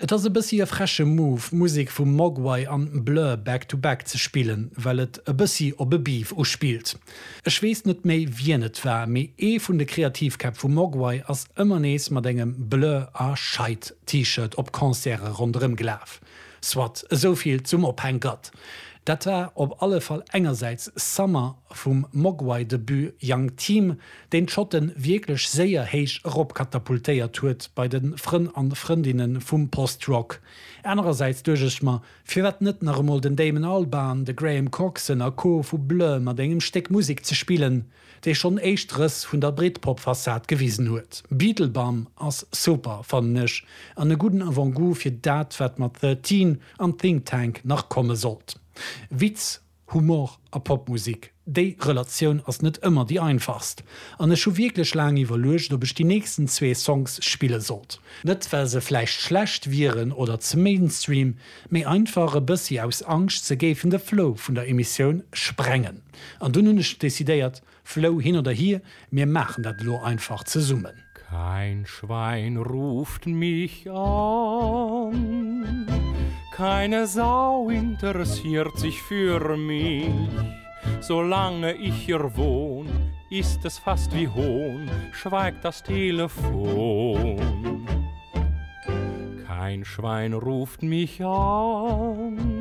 Et ass e bëssi e freche Move, Musek vum Mogwai an Blur back to back ze spillen, well et e bëssi op e Beef uspillt. Ech weess net méi wien et war, mee ee vun de Kreativkäpp vu Mogwai ass ëmmer nees mat engem Blur a Scheid-T-Shirt op Concerte ronderëm gelaf. Soit, esou vill zum Ophänkert. Dat war op alle Fall engersäits Summer vum Mogwai Debut Young Team, deen d'Schotten wierklech séier héich erop katapultéiert huet bei den Frënn an Frëndinnen vum Post Rock. Anerersäits duecht ech mer, firwat net nach emol den Damon Albarn, de Graham Coxon a Co vu Blur mat engem Stéck Musek ze spillen? dee schonn éischt Rëss vun der Britpop-Fassad gewisen huet. Beetlebum ass super, fannen ech, an e gudden Avant-goût fir dat, wat mat Thirteen an Think Tank nach komme sollt. Witz, Humor a Popmusek, déi Relatioun ass net ëmmer déi einfachst, an ech hu wierklech laang iwwerluecht, ob ech déi nächsten zwee Songs spille sollt. Net well se vläicht schlecht wieren oder ze Mainstream, mee einfach e bëssi aus Angscht, se géifen de Flow vun der Emissioun sprengen. An dunn hunn ech decidéiert, Flou, hin oder hir, mir maachen dat elo einfach zesummen. Kein Schwein ruft mich an, keine Sau interessiert sich für mich, solange ich hier wohn, ist es fast wie Hohn, schweigt das Telefon. Kein Schwein ruft mich an.